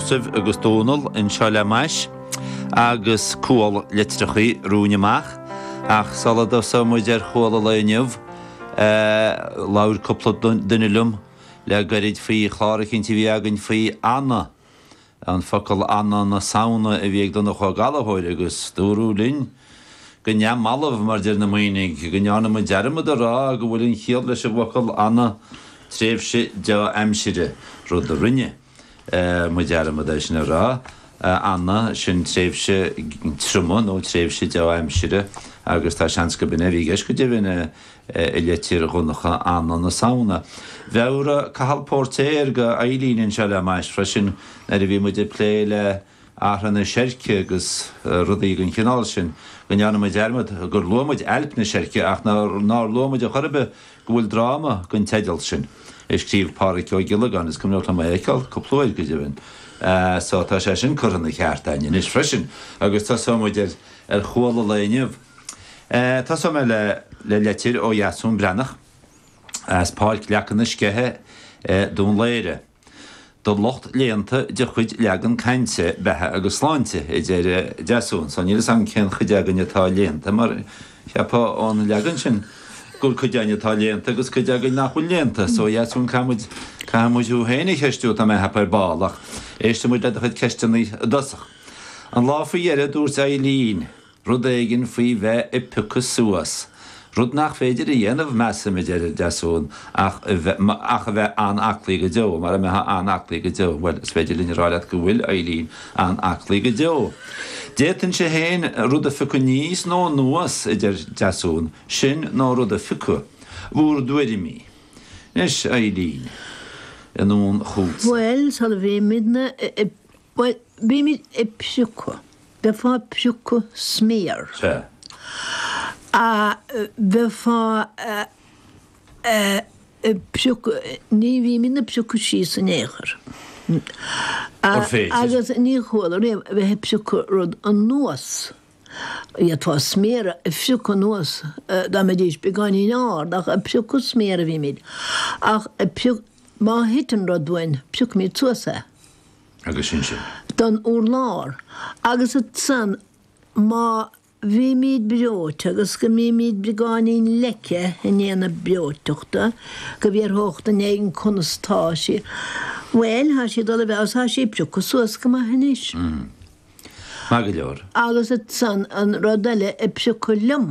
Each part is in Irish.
Sadhbh agus Dónal anseo le m'ais agus cual litreacha romhainn amach ach sula dtosaíonn muid ar chual an lae inniu, labhair cúpla duine liom le gairid faoi chlár eicínt a bhí againn faoi ana, an focal ana na Samhna a bhí ag Donncha Ó Gallachóir agus dúradh linn go neamhbhalbh, mar a deir na Muimhnigh, go ndearna muid dearmad a rá go bhfuil an chiall leis an bhfocal ana, tréimhse dea-aimsire, rud a rinne muid dearmad é sin a rá, ana, sin tréimhse triomaigh nó tréimhse dea-aimsire agus tá seans gurb in é a bhí i gceist go deimhin i leitir Dhonncha, ana na Samhna. Mheabhraigh Cathal Póirtéir do Eilín anseo le m'ais freisin nuair a bhí muid ag plé le Amhrán na Seirce agus rudaí den chineál sin, go ndearna muid dearmad gur luaigh muid Ailp na Seirce ach nár luaigh muid ar chor ar bith go bhfuil dráma den teideal sin, a scríobh Pádhraic Ó Giollagáin, is cuimhneach liom é a fheiceáil cúpla uair, go deimhin, so tá sé sin curtha ina cheart againn anois freisin agus tosóidh muid ar chual an lae inniu. Tosóidh mé le leitir ó Dheasún Breatnach as Páirc Leaca na Sceiche i nDún Laoghaire. Do lucht léannta de chuid Leagan Cainte, Beatha agus Sláinte, a deir Deasún. Sea, níl 'fhios agam cén chuid againn atá léannta, mar cheapfá ón leagan sin gur cuid againn atá léannta agus cuid againn nach bhfuil léannta. So, a Dheasúin, caithfidh muid thú féin a cheistiú, tá mé ag ceapadh, ar ball. Ach éistfimid le do chuid ceisteanna i dtosach. An lá faoi dheireadh, dúirt Eileen. Rud éigin faoi bheith ag piocadh suas. Rud nach féidir a dhéanamh, measaim, a deir Deasún, ach a bheith an-aclaí go deo. Mara mbeithfeá an-aclaí go deo, bhuel, is féidir linn a rá leat go bhfuil Eileen an-aclaí go deo. D'fhéadfainnse féin rud a phiocadh aníos nó anuas, a deir Deasún. Sin nó rud a phiocadh. Bhur dtuairimí? Anois, Eileen, anonn chugatsa. Bhuel, sula mbímidne Bhuel, bímid ag priocadh. Bheifeá ag priocadh sméar. Sea. A bheifeá ag priocadh, ní bhímid ag priocadh síos in aon chor. Gur féidir. Agus ní chuala riamh a bheith ag priocadh rud anuas. D'fhéadfá sméar a phriocadh anuas dá mbeidís beagáinín ard, ach ag priocadh sméar a bhímid. Ach ag priocadh, má thiteann rud uainn, priocfaimid suas é. agus sin sin. den urlár agus ansan má bhímíd breoite agus go mbímíd beagáinín leice i ndiaidh na breoiteachta go bhfiafródh duine éigin conas tá sí, bhuel, thá sí ag dul i bhfeabhas, thá sí ag priocadh suas go maith anois. Maith go leor. Agus ansan an rud eile ag priocadh liom.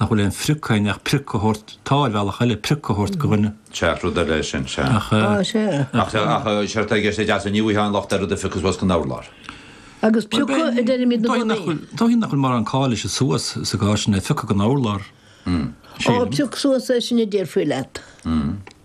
nach bhfuil aon phrioc ann ach prioc a thabhairt, tá, ar bhealach eile, prioc a thabhairt go dhuine. Sea, rud eile é sin, sea. Ach. Á, sea. Ach, sea, ach, sea, tá i gceist ag Deasún, ní bhfuightheá aon locht ar rud a phriocadh suas gon urlár. Agus priocadh a deirimidne i gcónaí. Dóigh nach bhfuil mórán call leis an suas sa gcás sin, é a phiocadh gon urlár. Á, prioc suas é sin a déarfaí leat.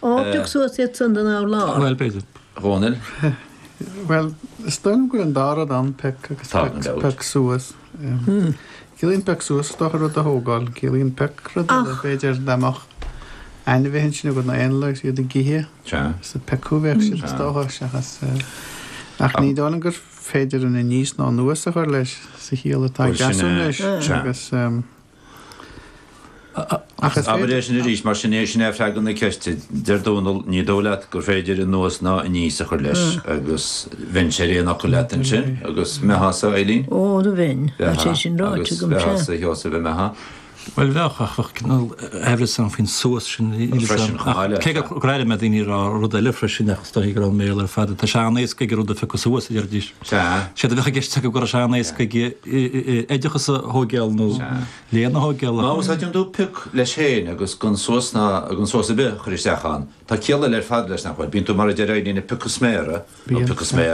Ó, pioc suas iad san den urlár. Bhuel, b'fhéidir. Dhónaill. Bhuel, is dóigh liom gur an dá rud ann, pioc agus pioc suas. Ciallaíonn pioc suas is dócha rud a thógáil, ciallaíonn pioc rud eile, b'fhéidir dá mbeadh ainmhithe ansin agat nó éanlaith is iad ag ithe. Sea. Is ag piocadh a bheadh siad is dócha seachas ach ní dóigh liom gur féidir aníos ná anuas a chur leis sa chiall atá ag Deasún leis agus Ach is féidir. Abair é sin arís, mar sin é, sin é freagra na ceiste. Deir Dónall, ní dóigh leat gur féidir anuas ná aníos a chur leis, agus bheinn ar aon fhocal leat ansin, agus an mbeifeása, Eileen? Ó, bheinn, tá sé sin ráite agam, sea. Agus an mbeifeása a Sheosaimh an mbeifeá. Bhuel, bheadh, ach bheadh cineál aimhreas ann faoin suas sin. Freisin, chomh maith le. Cé gur airigh mé daoine ag rá rud eile freisin, ach is dóigh gur ón mBéarla ar fad. Tá sé an-éasca aige rud a phiocadh suas, a deiridís. Sea. Séard a bheadh i gceist acu go raibh sé an-éasca aige oideachas a thóigeáil nó léann a thóigeáil. Má úsáideann tú pioc leis féin agus gan suas ná gan suas ar bith a chur isteach ann, tá ciall eile ar fad leis, nach bhfuil? Bíonn tú, mar a deir Eileen, ag piocadh sméara, nó piocadh sméar,